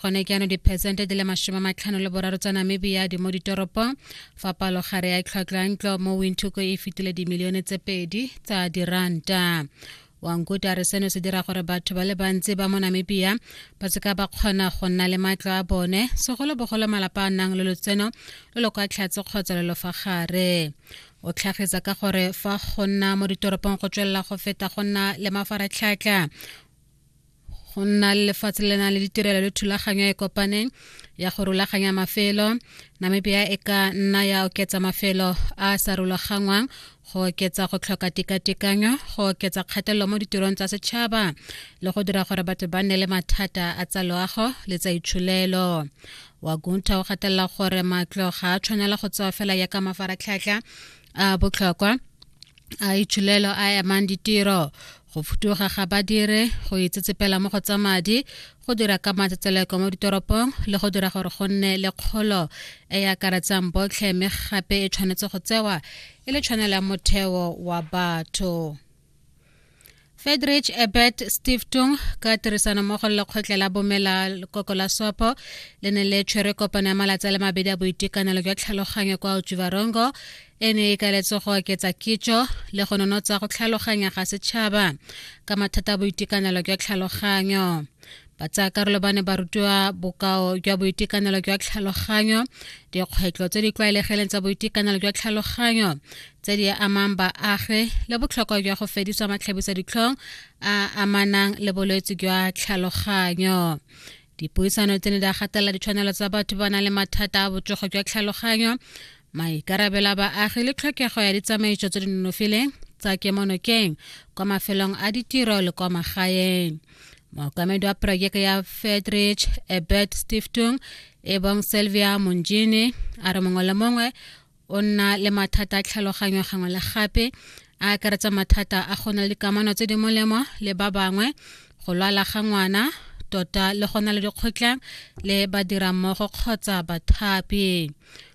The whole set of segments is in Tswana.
gone ke ano diphesente di le masome a matlhano le boraro tsa namibia di mo ditoropong fa palogare ya tlhwatlhwa ntlo mo winthuko e fetile dimilione tse pedi tsa diranta wankuti a re seno se dira gore batho ba le bantsi ba mo namibia ba seka ba kgona go nna le matlo a bone segolobogolo malapa a nang le lotseno lo lo kwa tlhatse kgotsa lo lo fa gare o tlhagisa ka gore fa go nna mo ditoropong go tswelela go feta go nna le mafaratlhatlha go nna le lefatshe le na le ditirelo le thulaganyo e kopaneng ya go rulaganya mafelo namibia e ka nna ya oketsa mafelo a sa rulaganngwang go oketsa go tlhoka tekatekanyo go oketsa kgatelelo mo ditirong tsa setšhaba le go dira gore batho ba nne le mathata a tsa loago le tsa itsholelo wagunta o gatelela gore matlo ga a tshwanela go tsewa fela ya ka mafaratlhatlha a botlhokwa a itshulelo a amang ditiro go futuga ga badire go itsetsepela mo go tsa madi go dira ka matsetseleko mo ditoropong le go dira gore go nne le kgolo e e akaretsang botlhe mme gape e tshwanetse go tsewa e le tshwanelo ya motheo wa batho Fedrich Ebert Stiftung ka tirisanommogo le lekgotlha la bomela lekoko la sopo le ne le tshwere kopano ya malatsi a le mabedi a boitekanelo jwa tlhaloganyo kwa utsivarongo e ne e kaletse go oketsa kitso le go nonotsa go tlhaloganya ga setšhaba ka mathata a boitekanelo jwa tlhaloganyo Batsaakarolo ba ne ba rutiwa bokao jwa boitekanelo jwa tlhaloganyo, dikgwetlho tse di tlwaelegileng tsa boitekanelo jwa tlhaloganyo tse di amang baagi le botlhokwa jwa go fedisa matlhabisa ditlhong a amanang le bolwetse jwa tlhaloganyo. Dipuisano tse ne di a gatelela ditshwanelo tsa batho ba nang le mathata a botsogo jwa tlhaloganyo, maikarabelo a baagi le tlhokego ya ditsamaiso tse di nonofileng tsa kemonokeng kwa mafelong a ditiro le kwa magaeng. mookamedi wa projeke ya fedrich ebert stiftung e bong selvia monjini a re mongwe le mongwe o nna le mathata a tlhaloganyo gangwe le gape a akaretsa mathata a go na le dikamano tse di molemo le ba bangwe go lwala ga ngwana tota le go na le dikgotlang le badirammogo kgotsa bathapi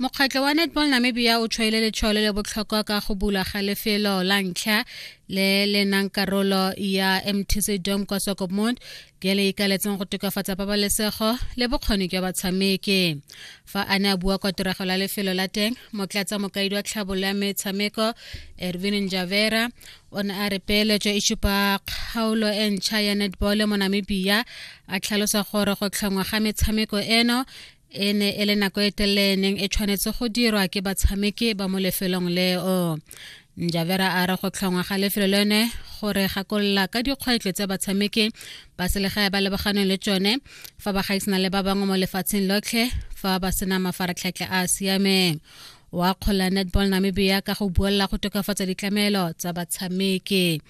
mokgatlho wa netball namibia o tshwaile letshwalo le botlhokwa ka go bula ga lefelo la ntlha le le nang karolo ya mtc dom kwa sokomont le le ikaletseng go tokafatsa pabalesego le bokgoni jwa batshameki fa a ne a bua kwa tirego la lefelo la teng motlatsa mokaedi wa tlhabolo ya metshameko ervin njavera o ne a re peeletso e supa kgaolo e ntšha ya netball mo namibia a tlhalosa gore go tlhongwa ga metshameko eno e ne e le nako e telele neng e tshwanetse go dirwa ke batshameki ba mo lefelong leo njavera a re go tlhongwa ga lefelo lone gore gakolola ka dikgwetlho tse batshameki ba selegae ba lebaganeng le tsone fa ba gaisana le ba bangwe mo lefatsheng lotlhe fa ba sena mafaratlhatlha a a siameng wa akgola netball namibia ka go buelela go tokafatsa ditlamelo tsa batshameki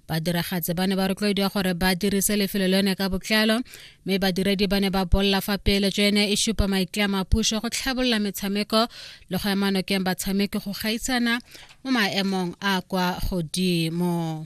badiragatse ba ne ba rotloediwa gore ba dirise lefelo le yone ka botlalo mme badiredi ba ne ba bolela fa peeletso ene e supa maitlamo a puso go tlhabolola metshameko le go ema nokeng batshameki go gaisana mo maemong a kwa godimo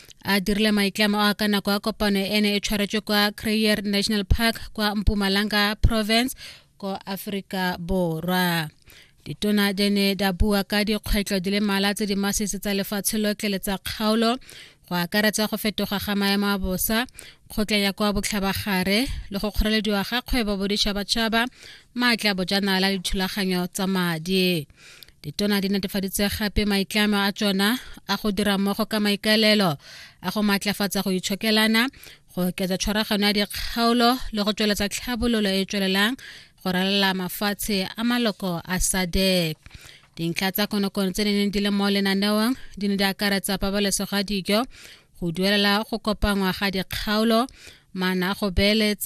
a dirile maitlamo a ka nako ya kopano e ne e tshwaretswe kwa crayer national park kwa mpumalanga province ko aforika borwa ditona di ne di bua ka dikgwetlho di le mala tse di masisi tsa lefatshe lotlhe le tsa kgaolo go akaretsa go fetoga ga maemo a bosa kgotla ya kwa botlhabagare le go kgorelediwa ga kgwebo boditšhabatšhaba maatla bojanala le dithulaganyo tsa madi ditona di netefaditse gape maitlamo a tsona a go dira mmogo ka maikaelelo a go maatlafatsa go itshokelana go oketsa tshwaragano ya dikgaolo le go tsweletsa tlhabololo e e tswelelang go ralala mafatshe a maloko a sadek dintlha tsa konokono tse di neng di le mo lenaneong di ne di akaretsa pabalesego ya dijo go duelela go kopangwa ga dikgaolo maana a go beeletsa